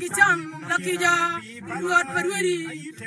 ki can lakica rwot pa rwodi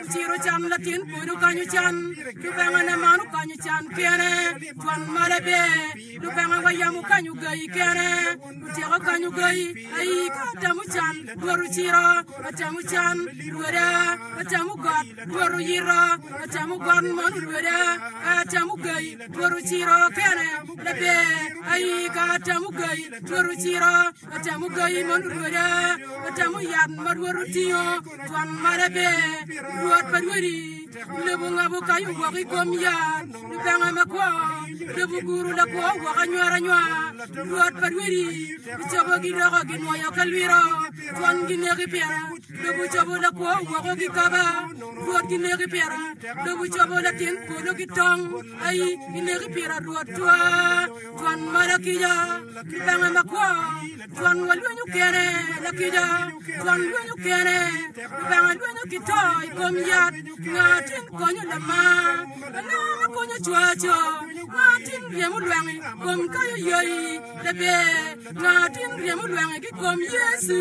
ociro can latin pwod okanyo can lubanga ne man okanyo can kene twan male ber lubanga wa yam okanyo gayi kene otyeko kanyo gayi ayi ka atamo can rwot ociro atamo can rwoda atamo got rwot oyiro atamo got man orwoda ka atamo gayi rwot ociro kene laber ayi ka atamo gayi rwot ociro Atamo gayi ma olurweda, atamo yat ma Rwot otingo, twon male ber. Rwot pa rwodi, lobo ongabo kayo woko i kom yat, lubanga makwo, lobo oguro lakwo woko anywar anywar. Rwot pa rwodi, gicobo gidoko ginwoyo ka lwiro, twon gineki pira, lobo ocobo lakwo woko gikaba. Rwot gineki pira, lobo ocobo latin polo ki tong, ayi, gineki pira Rwot twaa. Twon mo lakijo, kibanga makwo, twon wa lwenyo kene lakijo, twon lwenyo kene, kibanga lwenyo ki to i kom yat, nga tin konyo lama, lama ma konyo cwaco, nga tin ryemo lwengi kom kayo yoyi, lebe, nga tin ryemo lwengi ki kom Yecu.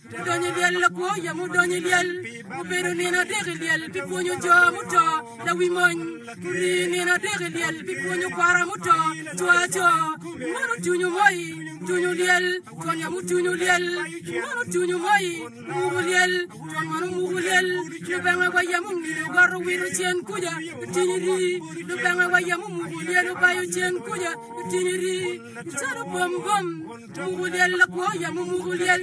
Mudonyo i lyel lakwo ya mudonyo i lyel mubedo nino adek i lyel pi pwonyo jo muto lawi mony muri nino adek i lyel pi pwonyo kwara muto cwaco mono tunyu moi tunyu lyel twon ya mutunyu lyel mono tunyu moi muku lyel twon mono muku lyel lubanga wa ya mungino goto wito cen kuja itinyi ri lubanga wa ya mumuku lyel obayo cen kuja itinyi ri calo bom bom Muku lyel lakwo yamo muku lyel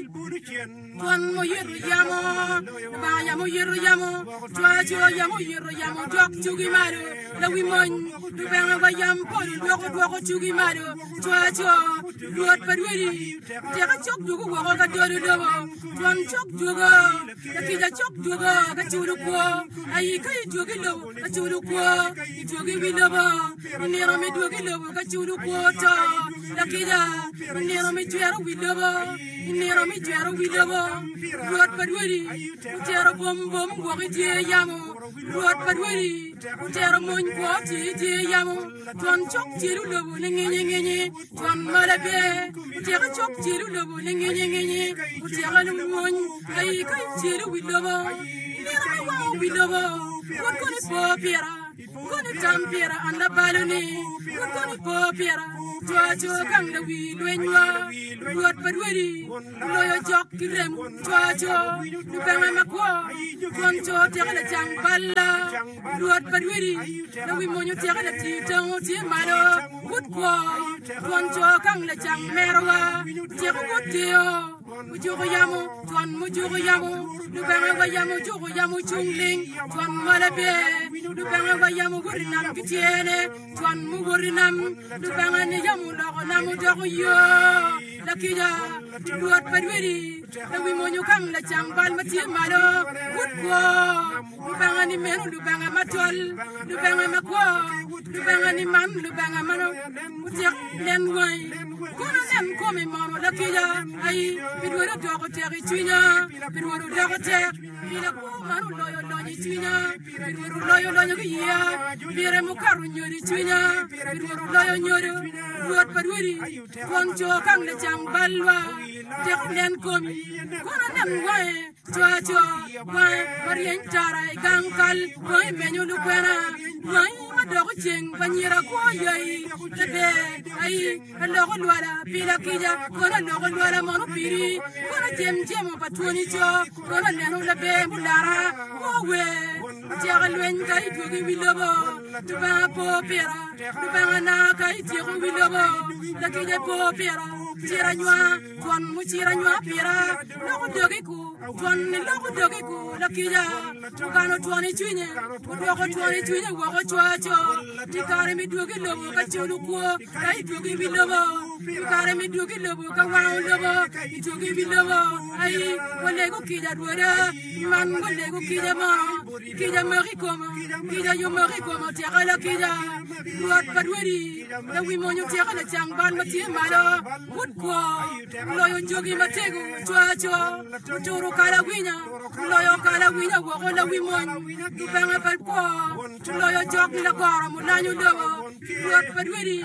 twon muyito yamo banga yamo yito yamo cwaco yamo yito yamo dok cugi malo lawi mony lubanga wa yam polo dwoko dwoko cugi malo cwaco rwot pa rwodi teka cok dwogo woko ka dolo lobo twon cok dwogo lakica cok dwogo ka culo kwo ayi ka idwogi lobo Acudu kwo i dwogi wi lobo, nino me dwogi lobo ka cudu kwo to. Lakica, nino me jwero wi lobo, nino me jwero wi lobo. Rwot pa rwodi otero bom bom wok i dye yamo, Rwot pa rwodi otero mony kwo tye i dye yamo, twon cok tyelo lobo ne ngenye ngenye. Twon mala bye, otyeka cok celu lobo ne ngenye ngenye, otyeka lumwony, ayi ka icelu wi lobo, nino ka wango wi lobo, pwod kono ipo pira, kono itam pira an labaloni, pwod kono ipo pira, cwaco gang da wi lwenywa, Rwot pa rwodi, oloyo jok ki rem, cwaco lubanga makwo, twon co tyeka lacang balla. Rwot pa rwodi, lawi mony otyeka latir tango tye malo but kwo, twon co kang lacang merowa, otyeko but keyo, ojuko yamo, twon mujuko yamo, lubanga wa yamo ojuko yamo ocung ling, twon mole pe, lubanga wa yamo owoto i nam ki tyene, twon muwoto i nam, lubanga ni yamo oloko nam odoko yo, lakica, Rwot pa rwodi, lawi mony okang lacang bal ma tye malo but kwo. Lubanga-ni meno Lubanga matol, Lubanga makwo, Lubanga-ni man Lubanga ma otyek nen wangi. Kono nen komi momo lakica ayi, pi Rwot odoko tek i cwinya, pi Rwot odoko tek, pi lakwor man oloyo lonyo i cwinya, pi Rwot oloyo lonyo ki iya, pire mukato nyodo i cwinya, pi Rwot oloyo nyodo, Rwot pa rwodi, twon co kang lacang balwa, teko nen komi, kono nen wange. Cwaco kwang ma ryeny tara i gang kal, kwang i menyo lukwena, kwang i ma doko ceng pa nyira kwo yai, ade ai aloko lwala pi lakica, kono aloko lwala mono piri, kono acem cemo pa twoni co, kono aneno laber mulara, owe caka lweny ka idwogo i wi lobo, Lubanga po pira, Lubanga na ka ityeko wi lobo, lakica po pira, cir anywa. Twon mucir anywa pira, loko dogiku, twon loko dogiku, lakija, okano twon i cwinye, odwoko twon i cwinye woko cwaco, i kare mi dwogi lobo ka culu kwo, ka i dwogi mi lobo, i kare mi dwogi lobo ka wango lobo, i dwogi mi lobo, ai, walegu kija rwoda, man walegu kija mo, kija mok i koma, kija yo mok i koma, otyeka lakija, rwot pa rwodi, lawi mony otyeka lacang bal ma tye malo, Pud kwo, wuloyo jogi matego coacoa, wuturo kalawinya, wuloyo kalawinya woko lawi mony, Lubanga pa kwo, wuloyo jok lagoro mulanyo lobo, Rwot pa rwedi.